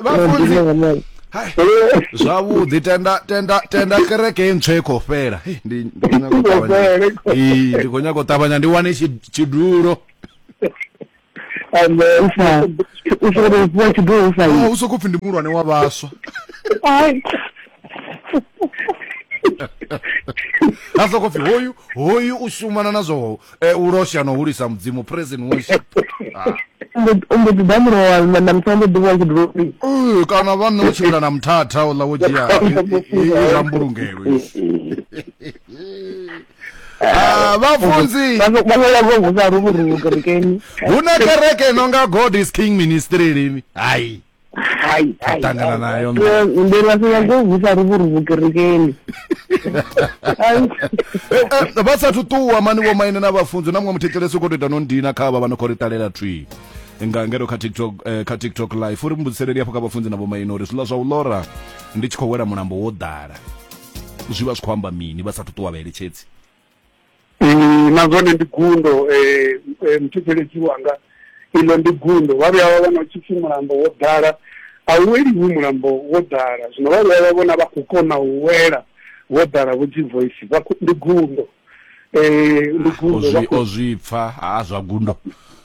vhafunzi hai zwavhuḓi tenda tenda tenda kereke ye ntswa i khou fhela Hei, ndi ndi khou nyaga u ṱavhanya. Ee, ndi khou nyaga u ṱavhanya ndi wane tshi- tshidulo Amen. Usa, usa uri ufhiwa tshidulo usa Ah, u sokou pfi ndi muhulwane wa vhaswa Ai. a sokou pfi hoyu hoyu u shumana na zwo Eh, u losha no hulisa mudzimu praise and worship ah. u mbo ḓi ḓa murowa na muthu ambo ḓivha tshi dovhi eh, kana vha nṋe u tshimbila na muthatha uḽa wo dzhia zwa mbulungelo ah, vhafunzi hu na kereke no nga god is king ministry lini hai hayi atangana nayo ndi lafika ngovusa ruvuruvu kerekeni eh, vha sathu ṱuwa mani vho maine na vhafunzi na muṅwe muthetshelesi u khou to ita no ndina kha vha vha no khou ri ṱalela twi nga ngero kha tiktok eh, kha tiktok live uri mbudziseleli hafho kha vhafunzi na vhomaine uri zwiḽa zwa u lora ndi tshi khou wela mulambo wo ḓala zwi vha zwi khou amba mini vha sathu ṱuwa vhaeletshedzi na zwone ndi gundo muthetshelesi wanga iḽo ndi gundo vha vhuya vha vhona u tshi pfhi mulambo wo ḓala a u weliwi mulambo wo ḓala zwino vha vhuya vha vhona vha khou kona u wela wo ḓala vho dzi voice vha ndi gundo ndi gundo o zwi pfa ha zwa gundo